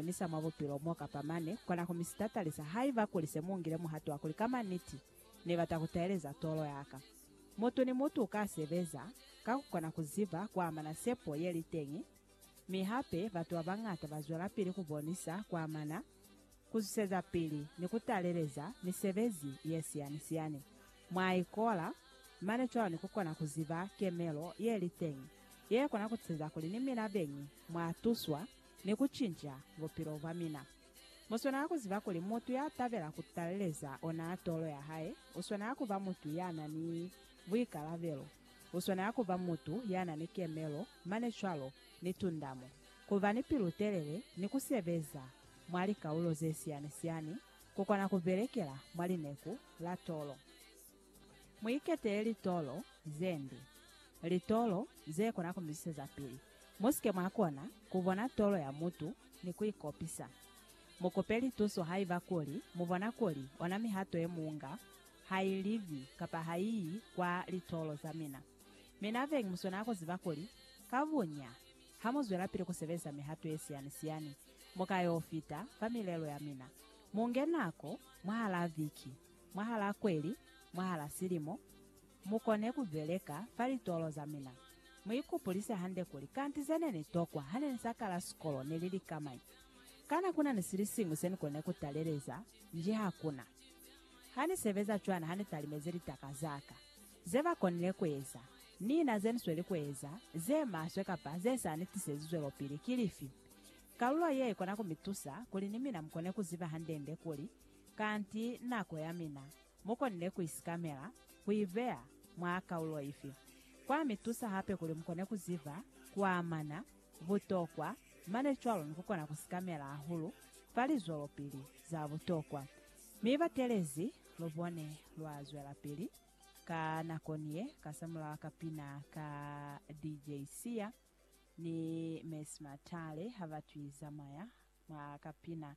Ni sa mwa bupilo mo kapa mane, kona ku mi sitatalisa haiba kuli se mu ngile muhato wa kuli ka maniti Ni bata ku taeleza tolo ya ka. Mutu ni mutu uka sebeza ka ku kona ku ziba ku amana sepo ye li teñi, mi hape batu ba bañata ba zwelapili ku bonisa ku amana, ku zwisezapili, ni ku taleleza misebezi ye siyani-siyani mwa ikola, mane cwalo ni ku kona ku ziba kemelo ye li teñi ye kona ku tiseza kuli ni mina beñi mwa tuswa. ni ku cinca bupilo bwa mina. Mu swanela ku ziba kuli mutu ya tabela ku taleleza ona tolo ya hae, u swanela ku ba mutu ya na ni buikalabelo, u swanela ku ba mutu ya na ni kemelo, mane cwalo ni tundamo, ku ba ni pilu-telele ni ku sebeza mwa likaulo ze siyani-siyani, ku kona ku belekela mwa lineku la tolo. Mu iketele litolo ze nde, litolo ze kona ku mi zwiseza pili. Mu si ke mwa kona ku bona tolo ya mutu ni ku i kopisa. Mu kope lituso haiba kuli mu bona kuli ona mihato ye mu nga ha i livi kapa ha i yi kwa litolo za mina. Mina beñi mu swanela ku ziba kuli ka bunya ha mu zwelapili ku sebelisa mihato ye siyani-siyani, mu ka yo fita fa milelo ya mina. Mu nge nako mwahalaa viki. mwahalaa kweli, mwahalaa silimo, mukone kubeleka fa litolo zamina. Muikupulise hande kuli, Kanti zene nitokwa hane nisakala sikolo neli likamañi? Kana kunani silisiñwi senikone kutaleleza? Nji hakuna. Hanisebeza cwana hanitalimezi litaka zaka. Zebakonile kueza, ni na zenisweli kueza, zemaswe kapa zesa nitisezi zwelopili, kilifi? Kalulo ye ikona kumitusa kuli ni mina mukone kuziba hande-nde kuli, Kanti nako ya mina mu konile ku i sikamela, ku i beya mwa kaulo ifi, kwa mi tusa hape kuli mu kone ku ziba ku amana butokwa mane cwalo ni ku kona ku sikamela hahulu fa lizwelopili za butokwa. Mi batelezi, lu bone lwa zwelapili ka nakoni ye ka samulaho ka pina ka DJ Sia ni Mercy Matale ha ba twi zamaya mwa ka pina